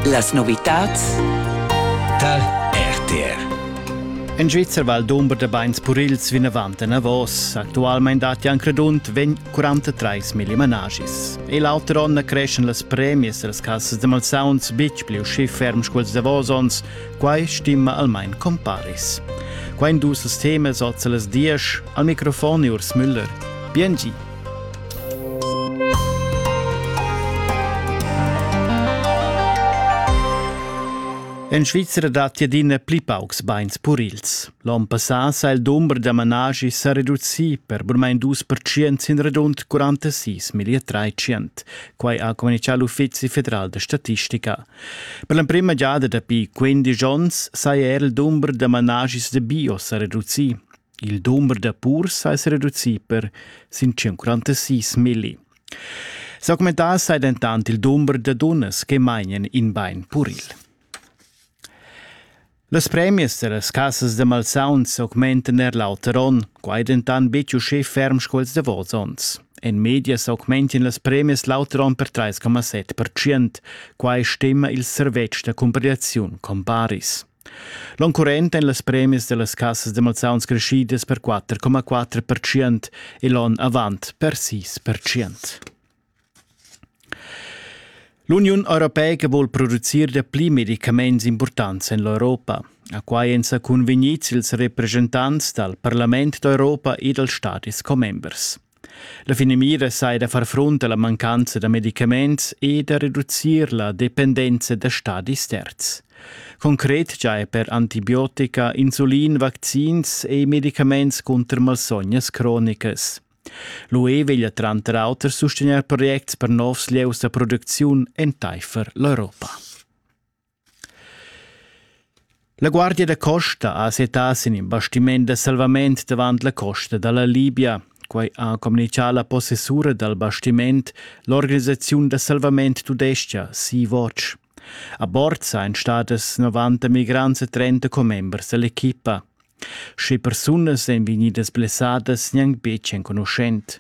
Las novitats tal RTR. In Svizzer Val d'Umber de Beins Purils vinavant enavos. Actualmein dat Jan Credunt vegn 43 mil managis. E l'auter onn creschen las premies als cassas de malsauns bitg pli usci ferm sculs davosons, quai stima almain comparis. Quain dus temas oz las diesch, al microfon Urs Müller. Bien gi! En Svizra datti adina pli paucs bains purils. L'onn passà sa il dumber da managi sa reducì per burmain dus percent sin radund 46 milia 300. Quai ha communichà l'Uffizi federal da statistica. Per l'emprima giada dapi 15 onns saja er il dumber da managis da bio sa reducì. Il dumber da purs ais reduci per sin 146 milli. S'augmentà sai dentant il dumber da dunnas che mainian in bain puril. Las premias da las casas da malsauns augmentan er l'auter onn, quai dentant betg uschè ferm sco ils davos onns. En media s'augmentian las premias l'auter onn per 3,7%. Quai stima il servetsch da cumpigliaziun Comparis. L'oncurrent èn las premias da las cassas da malsauns creschidas per 4,4% e l'onn avant per 6%. L'Uniun europeica vul producir dapli medicaments impurtants en l'Europa. A quai èn sa cunvegnids ils representants dal Parlament d'Europa e dals Stadis commembers. La finamira sai da far frunt alla mancanza da medicaments e da reducir la dependenza da stadis terz. Concret già è per antibiotica, insulin, vaccins e medicaments contro malsognas cronicas. L'UE veglia tranter auter sustegnair projects per novs lieus da producziun entaifer l'Europa. La guardia da costa ha settà sin in bastiment da salvament davant la costa da la Libia. Quai ha communitgà la possessura dal bastiment, l'organisaziun da salvament tudestga Sea-Watch. A bord sain stadas 90 migrants e 30 commembers dall'equipa. Sche persunas èn vegnidas blessadas gnanc betg enconuschent.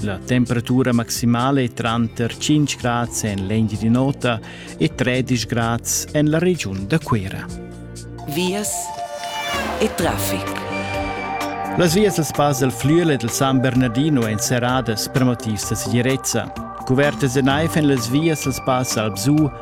La temperatura maximale è tranter 5 grads en l'Engiadin'Ota e 13 grads en la regiun da Cuira. Vias e traffic. Las vias dals pass del Flüel e del San Bernardino èn serradas per motivs da segirezza. Cuvertas e naiv en las vias dals pass Alpsu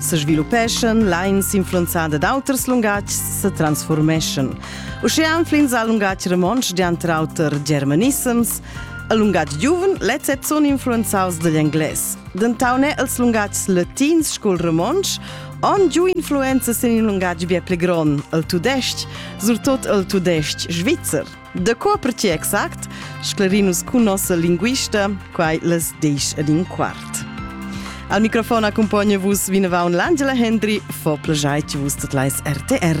sesviluppeschan, lains influenzada d'auters lungatgs se transformeschan. Uschea anflins al lungatg romontsch dianter auter germanissems, al lungatg giuven lets et sun influenzaus dagl englais. Dentaune els lungatgs latins scul romontsch on giu influenza sin il lungatg bia pli gron, il tudesc, surtot il tudesc svizzer. De co per ti exact? Sclarinus cun nossa linguista, quai les disch ad in quart. Al microfon accompagna vus vinavant l'Angela Hendry, fo plagiai vus tot lais RTR.